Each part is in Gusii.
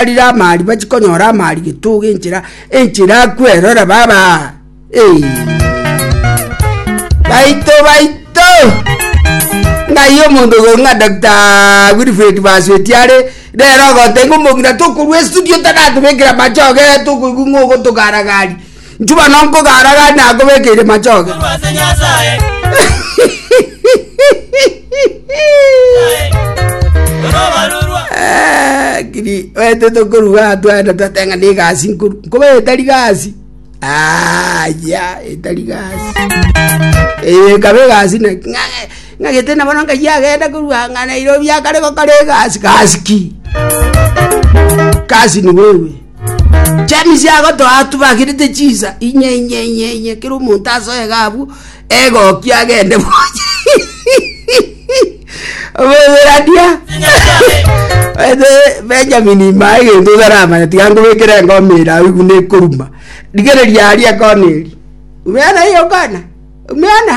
barire amaari bachi konyora amaari getogo enchera enchera kwerora baba hey. baito baito ng'ai omonto ogo ng'a dr wilfred basweti are rero ogotenga omong'ina tokorwa estudio taratobekera machoge tokoigwa ng'a ogotogaragari Nchuba nonkogara gari nakobekeire machoge. Korwa ase Nyasaye. Korwa obarurwa. Eh, kiri wete tokoruga atwende twatenga ni gasi nkuru nkobe etari gasi aya etari gasi Eh, kabe gasi na ng'a- ng'agete na bono ngai agenda korua ng'a nairobi akare gokora egasi gasi ki gasi ni wewe James agotoa atubagirete chinsa inye inye inye inye kera omonto asoyega abwo egoki agende boye oboyerania ete Benjamin imaa egento otaramanya tiga nkobekere engoma ere awi buna ekoruma rigereria aria kona eri umeana iyo kona umeana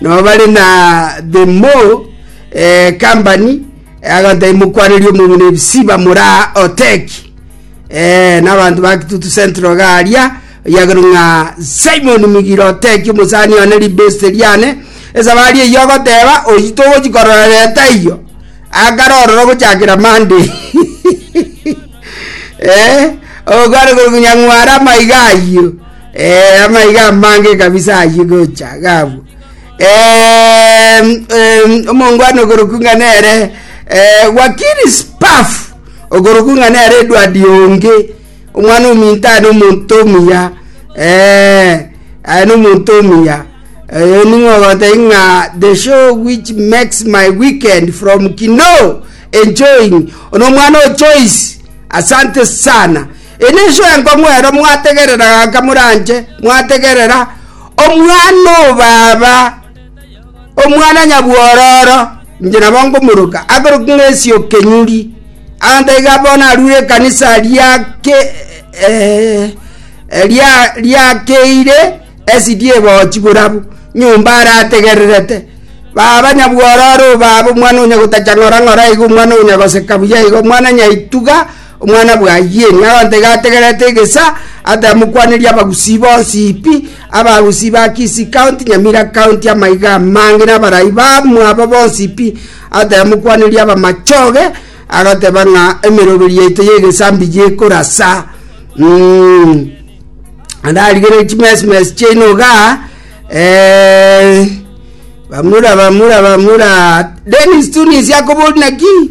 Nabo bare na The Mo eh, Company eh, aganto ai mokwanerie omong'ina ebisi bamore aa Oteki eh, n'abanto ba Kitutu Central iga aria oyagero ng'a Simon Migiro Oteki omosani one ribeste riane esabari eyio agoteba oyio togochi korora leta eyio akare ororo gochakera Monday eh, ogokwana korwa Nyang'wara amaiga ayio Eh, amaiga amange kabisa ayio gocha gabu. Eh, eh, omongwana ogoroku ng'a nere eh, wakiri spaf ogoroku ng'a nere edwadi onge omwana ominto aye nomonto omuya eh, aye nomonto omuya Eh, ning'ogote ng'a the show which makes my weekend from kino enjoying ono omwana o choice asante sana Inwe inse enkong'u ero mwategerera gaka moranche mwategerera Omwana-o-baaba, Omwana-nyabwororo, inche nabo ngomoroka, akorokigwa ng'esio kenyuri. Abanto iga bono arure ekanisa riake eh, eh, ria- riakeire esidi ebochi borabu nyomba arategererete. Baba nyabwororo, o Baba, Omwana onya gotacha ng'ora ng'ora iga, Omwana onya goseka buya iga, Omwana nyaituga, Omwana bwa Ayieni agontega ategerete egesa, atamokwaneria abagusii bonsi pi, abagusii ba Kisi County, Nyamira County, amaiga amange na abarai bamwabo bonsi pi, atamokwaneria abamachoge, agoteba ng'a emeroberi yaito y'egesa mbiya ekorasa. Mm. Ararigere chimesimesi chiaino iga, eh, bamura bamura bamura Dennis Tunisia akobori naki?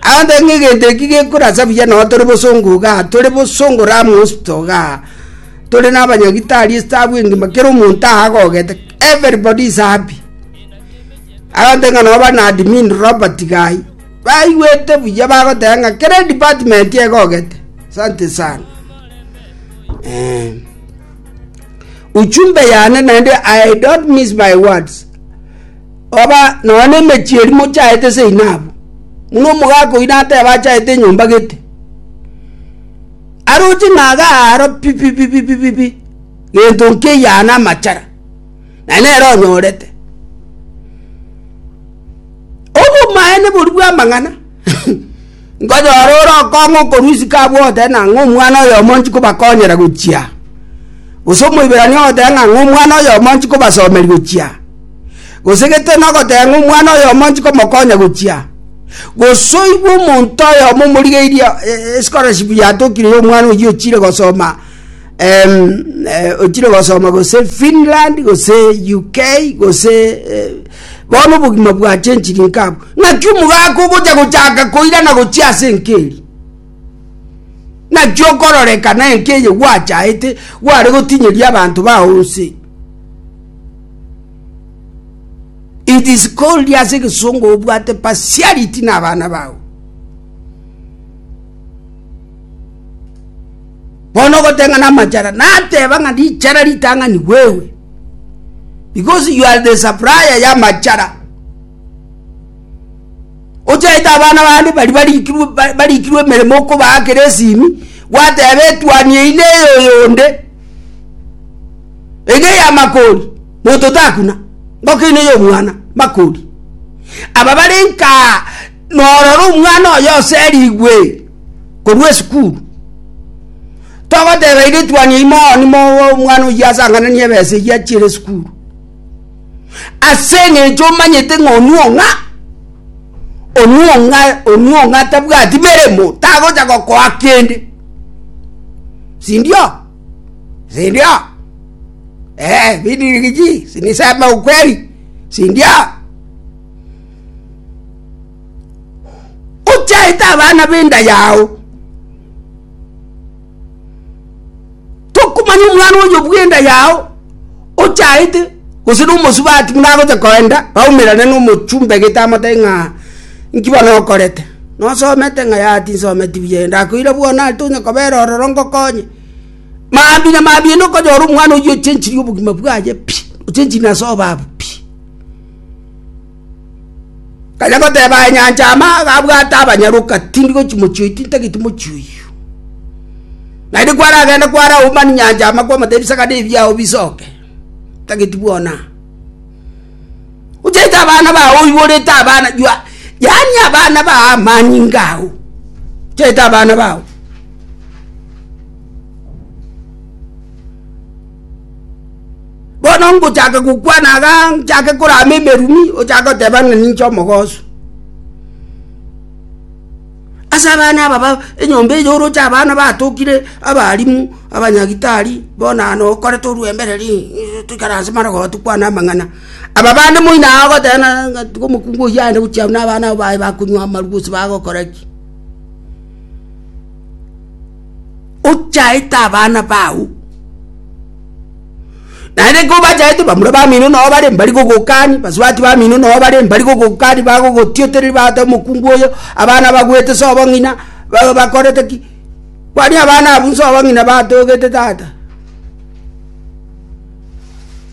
Aonde ng'a egento eki gekorasa buya nao tore bosongo igaa, tore bosongo raa monsto igaa, tore nabanyagi tari estabu engima kera omonto aagogete everybody is happy. Aonde ng'a nao bana admin Robert gai, baigwete buya bagoteba ng'a kera edepartment egogete. Asante sana. Eh. Uchumbe yane naende I don't miss my words. Oba nonya nemechie eria mochaete seinabu, buna omogaka oino ateba achaete enyomba gete, aroche ng'a iga aaro pi pi pi pi pi pi, gento nkeiyo aa namachara, naende nere onyorete. Obomaene boria bw'amang'ana. Nkonyora ore okong'u okorwa isiko abwo ogoteba ng'a ng'omwana oyomo nchikobakonyera gochia, gose Omoiberania ogoteba ng'a ng'omwana oyomo nchikobasomeria gochia, gose gete nogoteba ng'a omwana oyomo nchikomokonya gochia, gose oigwe omonto oyomo omorigeirie eh, scholarship yatokire ya omwana oyio ochire gosoma em, eh, ochire gosoma gose Finland gose UK gose eh, Bono obogima bwachenchiri nkabwo. Naki omogaka ogocha gochaka koirana gochia ase enka eri, naki okororekana enka eye gwachaete gware gotinyeria abanto bao onse. It is called ase egesongo obwate partiality na abana bao. Bono ogoteng'ana amachara nateba ng'a richara ritang'ani gwewe, because you are the supplier y'amachara. Ochaete abana bande bari barikirwe ba- barikirwe emeremo okobaakera esimi gwateba etwani eyi neye oyonde ege ya makori monto takuna ngokeine yomwana makori aba bare nkaa Nororo omwana oye oserigwe korwa esukuru, togoteba eritwani eyi moni mowe omwana oyio asangananie ebesa eyio achiere esukuru. Ase eng'encho omanyete ng'a onwe ong'a, onwe ong'a onwe ong'a tabwati meremo, tagocha gokoa kende. Sindio? Sindio? Eh, bidirigichi, siniseme ukweli, sindio? ochaete abana b'enda yao tokomanya omwana oyo bw'enda yao ochaete gose na omosubati buna agocha koenda baumerane na omochumba egete amote ng'a nki bono okorete nosomete ng'a yaya tinsometi buya eye ndakoira bono are tonya kobera ororo ngokonye maambia na maambia naende okonyora omwana oyio ochenchiri obogima bwaye pi ochenchiri na ase obabwo pi. Kanya goteba aye nyancha amaaga abwate abanyaroka, tindi gochi mochie oyi, tintageti mochie oyio. Naende kwaragende kwara Homani nyancha ama kwamotebia bisakane ebi biao bisoke, ntageti bwonaa. Ochaete abana bao oiborete abana you are yaani abana bao amani ngao, ochaete abana bao. bono ngochaka gokwana iga nchake korama emerumi ochake goteba ng'a ninche omogoso. Ase abana aba ba enyomba eye oroche abana batokire abalimu abanyagitari bono na okorete orwembereri ng'ii toikare ase marogoba tokwane amang'ana aba bande moino aye ogoteba na ng'a tiga omokungu oyio aende gochia na abana abo baye bakonywa amarwa gose bagokora ki. Ochaete abana bao, naende ekero obachaete bamura bamino nao bare mbari gogokani, basubati bamino nao bare mbari gogokani bagogotiotereri bagoteba omokungu oyo, abana abagwete se obong'ina ba bakorete ki? Kwani abana abwo nse obong'ina batogete tata.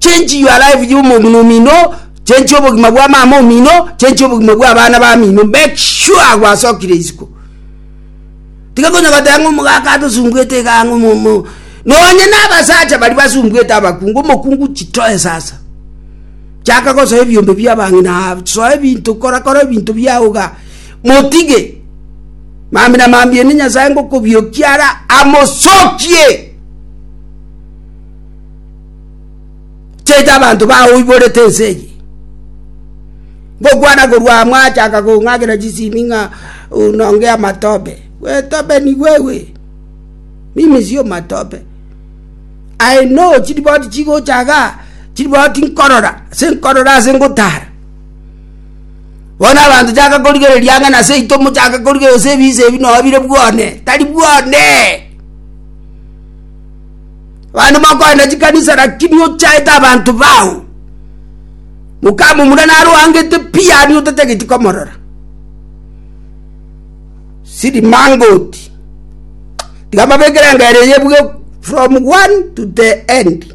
Change your life y'omong'ina omino, change obogima bwa mama omino, change obogima bwa abana bamino, make sure gwasokire isiko. Tiga konya goteba ng'a omogaka adosumbuete iga ang'o momo. Nonye na abasacha bari basumbuete abakungu, omokungu chitoe sasa. Chaka gosoa ebiombe bia abang'ina, soa ebinto, kora kora ebinto biao iga. Motige. Mambia na mambia ende Nyasae ngokobiokia ara amosokie. chiaito abanto baoiborete ense eye. Ngokwana korwa amo achaka kong'akera chisimi ng'a nonge amatobe. Gwetobe nigo ewe. Mimi sio matobe. I know chiriboti chigochaga, chiriboti nkorora, ase nkorora ase ngotara. Bono abanto chaka korigereria ang'e nase aito mochake korigereria gose ebise ebi noo bire bwane, tari bwane. Abande mokoenda chikanisa lakini ochaete abanto bao. Mokamomura naro oangete pi yani otatageti komorora. Sidi mangoti. Tiga mabekere engero eye buge from one to the end.